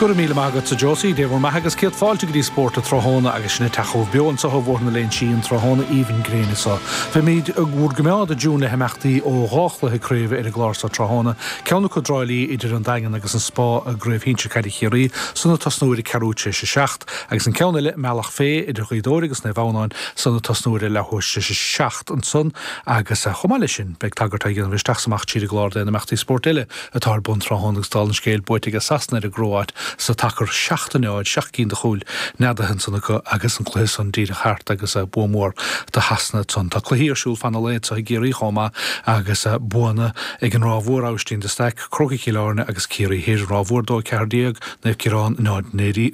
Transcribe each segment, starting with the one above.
Go raibh míle maith agatsa Josie, Dé bhur mbeatha agus céad fáilte go dtí Spórt an Tráthnóna agus sinn ag teacht chugaibh beo anseo ó Bhóthar na Léinsí an tráthnóna aoibhinn gréine seo. Beimíd bhur gcoimeád i dtiúin le himeachtaí ó dhá chluiche craoibhe ar an gclár seo tráthnóna, ceann acu i dTrá Lí idir An Daingean agus an Spá i gCraobh Shinsear Caide Chiarraí san ag tosnú ar a ceathrú tar éis a seacht, agus an ceann eile i mBealach Féidh idir Gaoth Dobhair agus Naomh Adhamhnáin san ag tosnú ar a leath tar éis a seacht ansan agus chomh maith leis sin beidh tagairt á dhéanamh isteach 's amach tríd an gclár d'aon imeachtaí spóirt eile atá ar bun tráthnóna agus dála an scéil, buaite aige Sasana ar an gCróáit sa tsacar 7, 0, seacht gcinn de chúil neadaithe ansan acu agus an cluiche san díreach thart agus bua mór do Shasana ansan. Tá cluichí ar siúl fan an lae anseo i gCiarraí chomh maith agus buanna ag an Ráth Mhór, Abhaistín de Staic, Crócaigh Chill Airne agus Ciarraí Thoir, Ráth Mhór 2, 14, Naomh Ciarán 0,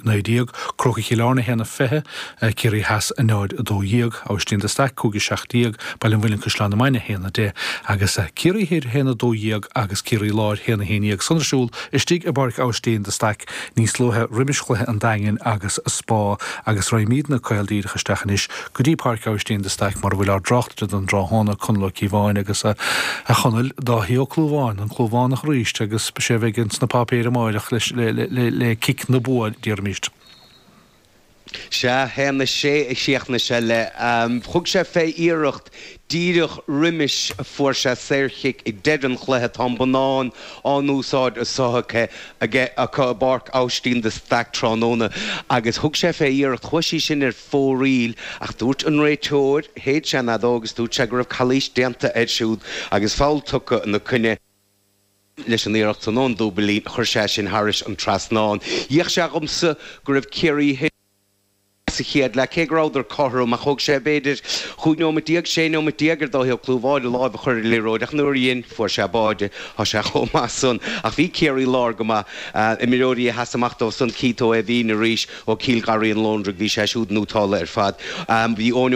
19, Crócaigh Chill Airne 1, 20. Ciarraí Theas 0, 12, Abhaistín de Staic 5, 17, Baile an Mhuilinn Caisleán na Mainge 1, 10, agus Ciarraí Thoir 1, 12 agus Ciarraí Láir 1, 11, san ar siúl istigh i bPáirc Abhaistín de Staic níos luaithe roimis chluiche an Daingin agus Spá agus raghaimídne caol díreach isteach anois go dtí Páirc Abhaistín de Staic mar a bhfuil ár dtráchtaire don dtráthnóna, Conall Ó Cíobháin agus a. A Chonaill, Dáithí Ó Clúmháin, an Clúmhánach arís agus 'sé a bheidh ins na páipéir amáireach le cic na bua déarfaimíst. Sea, théanna sé a chríochnaigh sé le, thug sé fé iarracht díreach roimis a fuair sé saorchic ag deireadh an chluiche, tá an bonnán in úsáid a sothuigthe aige acu i bPáirc Austin de Staic tráthnóna agus thug sé fé iarracht, chuaigh sí sin ar fóraoil ach dúirt an réiteoir, shéid sé an fheadóg is dúirt sé go raibh calaois déanta air siúd agus foul tugtha ina coinne. leis an iarracht san ón dtaobhlíne, chuir sé sin thairis an trasnán. D'fhéach sé dhomsa go raibh Ciarraí Thoir sa chéad leath, cé go rabhadar cothrom, ach thóg sé, b'fhéidir, chúig nóimeat déag, sé nóimeat déag ar Dháithí Ó Clúmháin a láimh a chur ar an liathróid, ach nuair a dhein, fuair sé báide. Tá sé chomh maith san. Ach bhí Ciarraí Láir go maith. Imreoirí a sheas amach dóibh san, Keith Ó hÉimhín arís, ó Chill Gharraí an Lóndraigh, bhí sé siúd nótálta ar fad. Bhí Eoin Ó.